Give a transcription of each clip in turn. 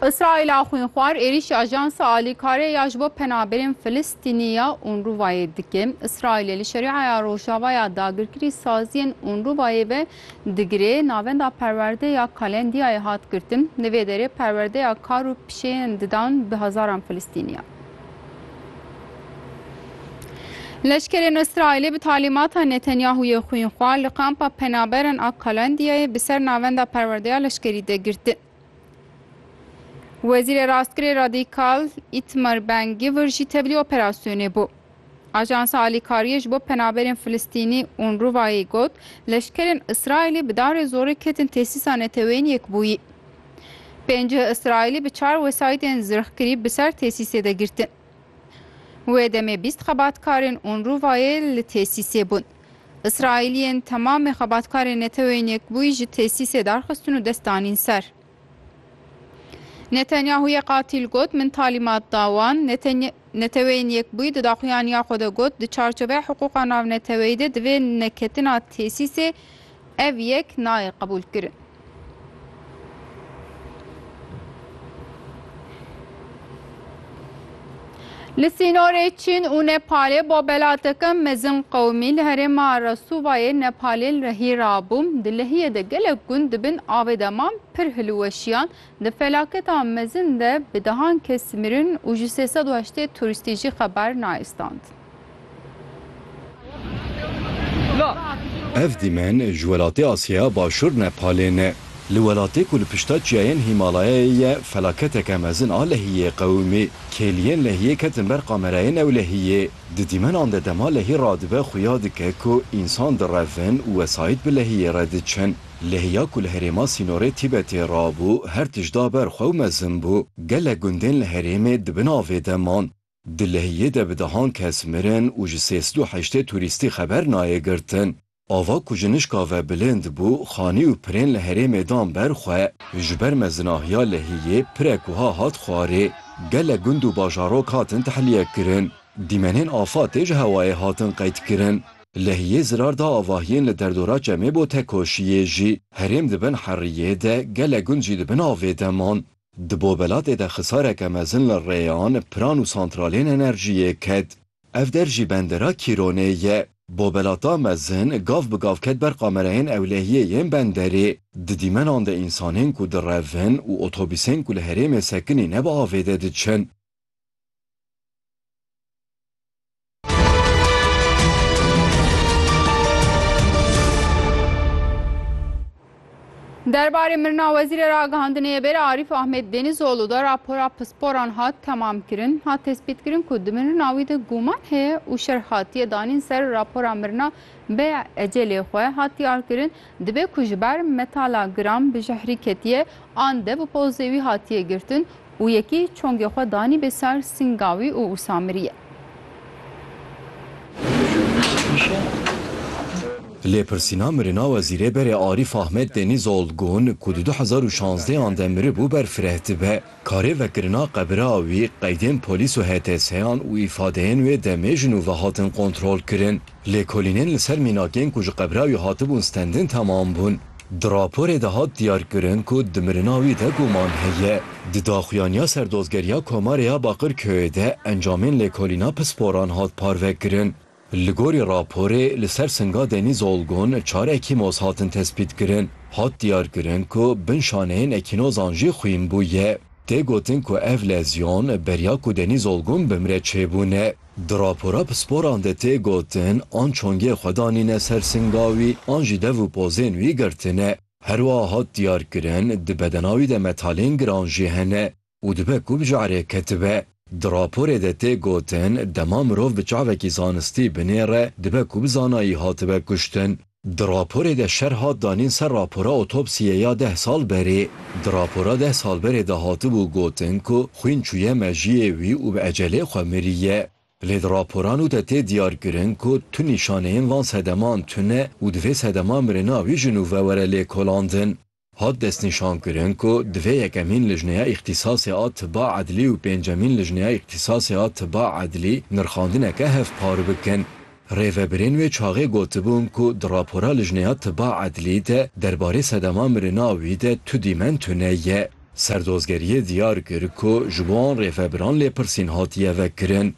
Îsraîla xwînxwar êrîşî ajansa alîkarê ya ji bo penaberên Filistînî ya Unrûvayê dike. Îsraîlê li Şerîaya Rojava ya dagirkirî saziyên Unrûvayê ve digire. Navenda perwerde ya Kalendiyayê hat girtin. Li vê derê perwerdeya kar û pişeyên didan bi hezaran Filistînî ye. Leşkerên Îsraîlê bi talîmata Netanyahûyê xwînxwar li kampa penaberan a Kalandiyayê bi ser navenda perwerdeya leşkerî de girtin. Wezîrê Rastgirê Radîkal Îtmar Ben Givir jî tevlî operasyonê bû. Ajansa Alîkariyê ji bo penaberên Filistînî UNRWA'yê got, leşkerên Îsraîlê bi darê zorê ketin tesîsa neteweyên yekbûyî. Pênc Îsraîlî bi çar wesayîtên zirxkirî bi ser tesîsê de girtin. Wê demê bîst xebatkarên UNRWA'yê li tesîsê bûn. Îsraîliyên temamê xebatkarên Neteweyên Yekbûyî ji tesîsê darxistin û dest danîn ser. Netanyahu yê qatîl got, Min talîmat da wan. Neteweyên Yekbûyî di daxuyaniya xwe de got, di çarçoveya hiqûqa navneteweyî de divê neketina tesîsê Ev yek nayê qebûlkirin. Li sînorê Çîn û Nepalê bo belateke mezin qewimî li herêma Resûvayê Nepalê li rehî rabû. Di lehiyê de gelek gund di bin avê de man pir hilweşiyan. Di felaketa mezin de bi dehan kes mirin û ji sê sed û heştê turîstî jî xeber nayê stand. Ev dîmen ji welatê Asyaya Başûr Nepalê ne. Li welatê ku li pişta çiyayên Hîmalayayê ye felaketeke mezin a lehiyê qewimî. Kêliyên lehiyê ketin ber kamerayê newlehiyê. Di dîmenan de dema lehî radibe xuya dike ku însan direvin û wesayît bi lehiyê re diçin. Lehiya ku li herêma sînorê Tîbetê rabû her tişt da ber xwe û mezin bû. Gelek gundên li herêmê di bin avê de man. Di Lehiyê de bi dehan kes mirin û ji sê sed û heştê turîstî xeber nayê girtin. Ava ku ji nişka ve bilind bû, xanî û pirên li herêmê dan ber xwe. Ji ber mezinahiya Lehiyê pirek wiha hat xwarê, Gelek gund û bajarok hatin tehliyekkirin. Dîmenên afatê ji hewayê hatin qeydkirin. Lehiyê zirar da avahiyên li derdora Çemê bo Tekoşiyê jî. Herêm di bin heriyê de, gelek gund jî di bin avê de man. Di Bobelatê de xisareke mezin li rêyan, piran û santralên enerjiyê ket. Ev der jî bendera Kîronê ye. Bobelata mezin gav bi gav ket ber qamereyên ewlehiyê yên benderê. Di dîmenan de însanên ku direvin û otobîsên ku li herêmê sekinî ne bi avê de diçin. Derbarê mirina wezîrê ragihandinê bêra Arîf Ahmet Denîzoğlu da rapora pisporan hat temamkirin, hat tespîtkirin ku di mirina wî de guman heye û şerh hatiye danîn ser rapora mirina bê ecelê xwe hat diyarkirin, Dibe ku ji ber metala giram bi jehrî ketiye an de bi pozê wî hatiye girtin û yekî çongê xwe danî bê ser sînga wî û wisa miriye. Lêpirsîna mirina Wezîrê Berê Arîf Ahmet Denîzoğl gon ku di du hezar û şazdeh an de miribû ber fireh dibe. Karê vekirina qebira wî qeydên polîs û HTS'an û îfadeyên wê demê ji nû ve hatin kontrolkirin. Lêkolînên li ser mînakên ku ji Qebrawi hatibûn stendin temam bûn. Di raporê de hat diyarkirin ku di mirina wî de guman heye. Di daxuyaniya ser Dozgeriya Komarê ya Baqirköyê de encamên lêkolîna pisporan hat parvekirin. Li gorî raporê li ser Singa Denîz Olgun çar ekîmoz hatin tespîtkirin. Hat diyarkirin ku bin şaneyên ekînozan jî xwîn bûye. Tê gotin ku ev lezyon beriya ku Denîz Olgun bimre çêbûne. Di rapora pisporan de tê gotin, an çongê xwe danîne ser singa wî an jî dev û pozên wî girtine. Her wiha hat diyarkirin, di bedena wî de metalên giran jî hene û dibe ku bi jehre ketibe. Di raporê de tê gotin, dema mirov bi çavekî zanistî binêre, dibe ku bi zanayî hatibe kuştin. Di raporê de şer hat danîn ser rapora otopsiyê ya deh sal berê. Di rapora deh sal berê de hatibû gotin ku xwîn çûye mejiyê wî û bi ecelê xwe miriye. Lê di raporan û de tê diyarkirin ku tu nîşaneyên van sedeman tune û di vê sedema mirina wî jin û ve were lêkolandin. Hat destnîşankirin ku divê yekemîn lijneya îxtîsasê a tiba edlî û pêncemîn lijneya îxtîsasê a tiba edlî nirxandineke hevpar bikin. Rêvebirên wê çaxê gotibûn ku di rapora lijneya tiba edlî de derbarê sedema mirina wî de tu dîmen tu ne ye. Serdozgeriyê diyar kir ku ji bo an rêvebiran lêpirsîn hatiye vekirin.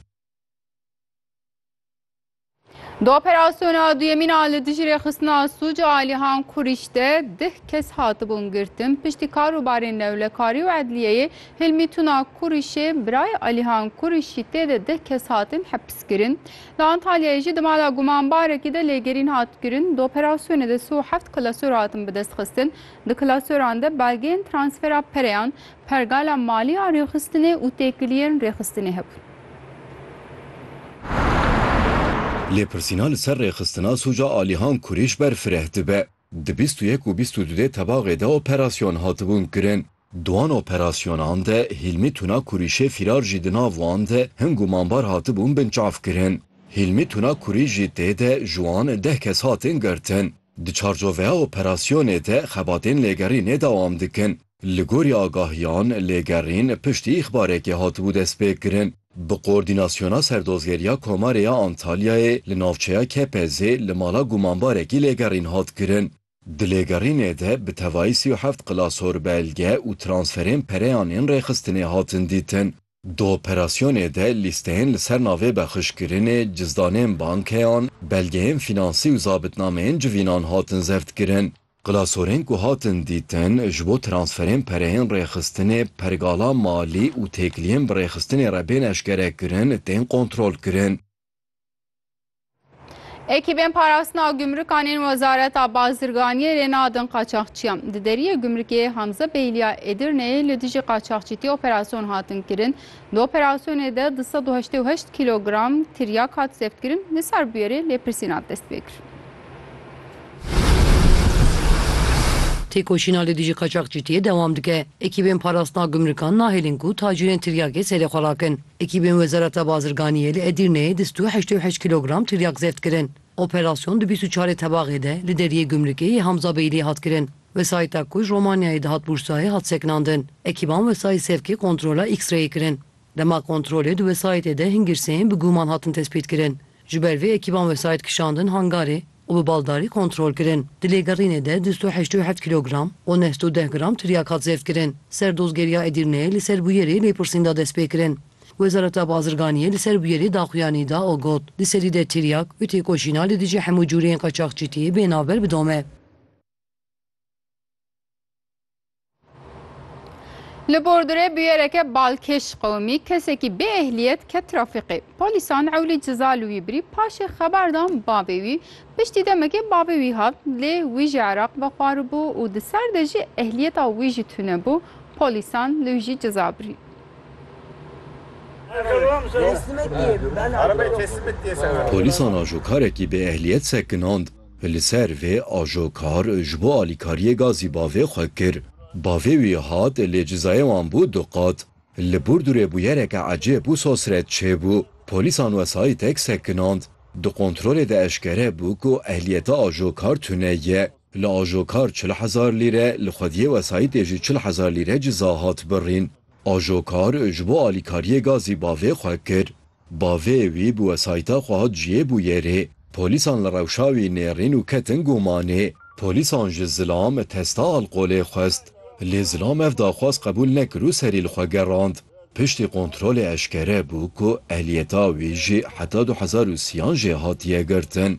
Di operasyona duyemîn a li dijî rêxistina sûc a Alihan Kurîş de dih kes hatibûn girtin. Piştî karûbarên newlekarî û edliyeyê Hilmî Tuna Kurîşê birayê Alihan Kurîşî tê de dih kes hatin hepiskirin. Li Antalyayê jî di mala gumanbarekî de lêgerîn hat kirin. Di operasyonê de sê û heft klasor hatin bidestxistin. Di klasoran de belgeyên transfera pereyan, Pergala malî a rêxistinê û têkiliyên rêxistinê hebûn. Lêpirsîna li ser rêxistina sûca alîhan kurîş ber fireh dibe. Di bîst û yek û bîst û du dê tebaxê de operasyon hatibûn kirin. Di wan operasyonan de Hîlmî Tuna Kurîşê fîrar jî di nav wan de hin gûmanbar hatibûn binçav kirin. Hîlmî Tuna Kurîş jî tê de ji wan deh kes hatin girtin. Di çarçoveya operasyonê de xebatên lêgerînê dewam dikin. Li gorî agahiyan, lêgerîn piştî îxbarekê hatibû destpêkirin. Bi Koordînasyona Serdozgeriya Komarê ya Antalyayê li navçeya Kepezê li mala gumanbarekî lêgerîn hat kirin. Di lêgerînê de bi tevayî sî û heft qilasor belge û transferên pereyan ên rêxistinê hatin dîtin. Di operasyonê de lîsteyên li ser navê bexşkirinê, cizdanên bankeyan, belgeyên fînansî û zabitnameyên civînan hatin zevtkirin. Klasorên ku hatin dîtin, ji bo transferên pereyên rêxistinê, pergala malî û têkiliyên bi rêxistinê re bên eşkerekirin, tên kontrolkirin. Ekîbên parastina gumrûkan ên Wezareta Bazirganiyê rê nadin qaçaxçiyan. Di deriyê gumrikê Hamza Beyliya Edirneyê li dijî qaçaxçîtî operasyon hatin kirin. Di operasyonê de du sed û heştê û heşt kîlogram tiryak hat zevtkirin, li sar bûyerê lêpirsîn hat destpêkirin. Têkoşîna li dijî qaçaxçîtiyê dewam dike. Ekîbên parastina gumrikan nahêlin ku tacîrên tiryakê serê xwe rakin. Ekîbên Wezareta Bazirganiyê li Edirneyê di sto heştê û heşt kîlogram tiryak zeft kirin. Operasyon di bîst û çarê tebaxê de li deriyê gumrukê yê Hamza Beylî hat kirin. Wesayîta ku ji Romanyayê dihat Bursayê hat sekinandin. Ekîban wesayît sevkê kontrola X-rayê kirin. Dema kontrolê di wesayîtê de hin girseyên bi guman hatin tespîtkirin. Ji ber vê ekîban wesayît kişandin hangarê. û bi baldarî kontrol kirin. Di lêgerînê de du sed û heşt û heft kîlogram û neh sed û deh gram tiryak hat zêdkirin. Ser dozgeriya Edirneyê li ser bûyerê lêpirsîn da destpêkirin. Wezareta Bazirganiyê li ser bûyerê daxuyanî da û got, Di serî de tiryak û têkoşîna li dijî hemû cûreyên qaçaxçîtiyê bê navber bidome. Li Bordurê buyereke balkêş qewimî kesekî bê ehliyet ket trafîqê. Polîsan ewlî ciza li wî birî paşê xebar dan bavê wî. Piştî demekê bavê wî hat lê wî ji Iraq ve xwaribû û di ser de jî ehliyeta wî jî tune bû. Polîsan li wî jî ciza birî. Polîsan ajokarekî bê ehliyet sekinand. Li ser vê ajo kar ji bo alîkariyê gazî bavê xwe kir. Bavê wî hat lê cizayê wan bû du qat. Li Burdurê bûyereke ecêb û sosret çêbû. Polîsan wesayîtek sekinand. Di kontrolê de eşkere bû ku ehliyeta ajo kar tune ye. Li ajo kar çil hezar lîre, li xwediyê wesayîtê jî çil hezar lîre ciza hat birîn. Ajo kar ji bo alîkariyê gazî bavê xwe kir. Bavê wî bi wesayîta xwe hat ciyê bûyerê. Polîsan li rewşa wî nêrîn û ketin gumanê. Polîsan ji Zilam testa alqolê xwest. Lê Zilam ev daxwaz qebûl nekir û serî li xwe gerand. Piştî kontrolê eşkere bû ku ehliyeta wî jî heta du hezar û siyan jê hatiye girtin.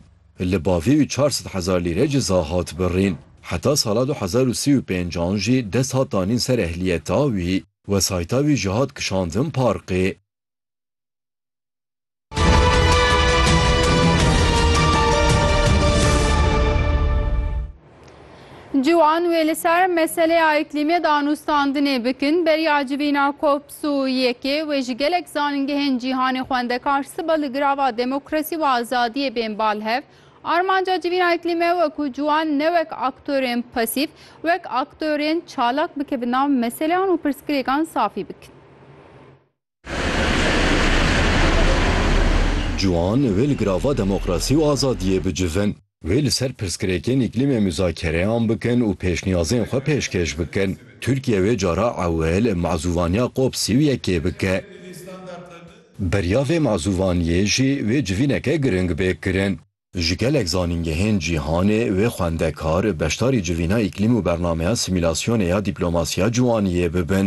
Li bavê wî çar sed hezar lîre ciza hat birîn. Heta sala du hezar û sî û pênc an jî dest hat danîn ser ehliyeta wî. Wesayîta wî jî hat kişandin parqê. Ciwan wê li ser meseleya îklîmê danûstandinê bikin, beriya civîna COPS û yekê wê ji gelek zanîngehên cîhanê xwendekar siba li girava demokrasî û azadiyê bên bal hev. Armanca civîna îklîme we ku ciwan ne wek aktorên pasîf, wek aktorên çalak bike bi nav meseleyan û pirsgirêkan safî bikin. Ciwan wê li girava demokrasî û azadiyê bicivin. Wê li ser pirsgirêkên îklîmê muzakereyan bikin û pêşniyazên xwe pêşkêş bikin. Tirkiye wê cara ewil mazûvaniya cop sî û yekê bike. Beriya vê mazûvaniyê jî wê civîneke giring bê kirin. Ji gelek zanîngehên cîhanê wê xwendekar beşdarî civîna îklîm û bernameya simîlasyonê ya dîplomasiya ciwaniyê bibin.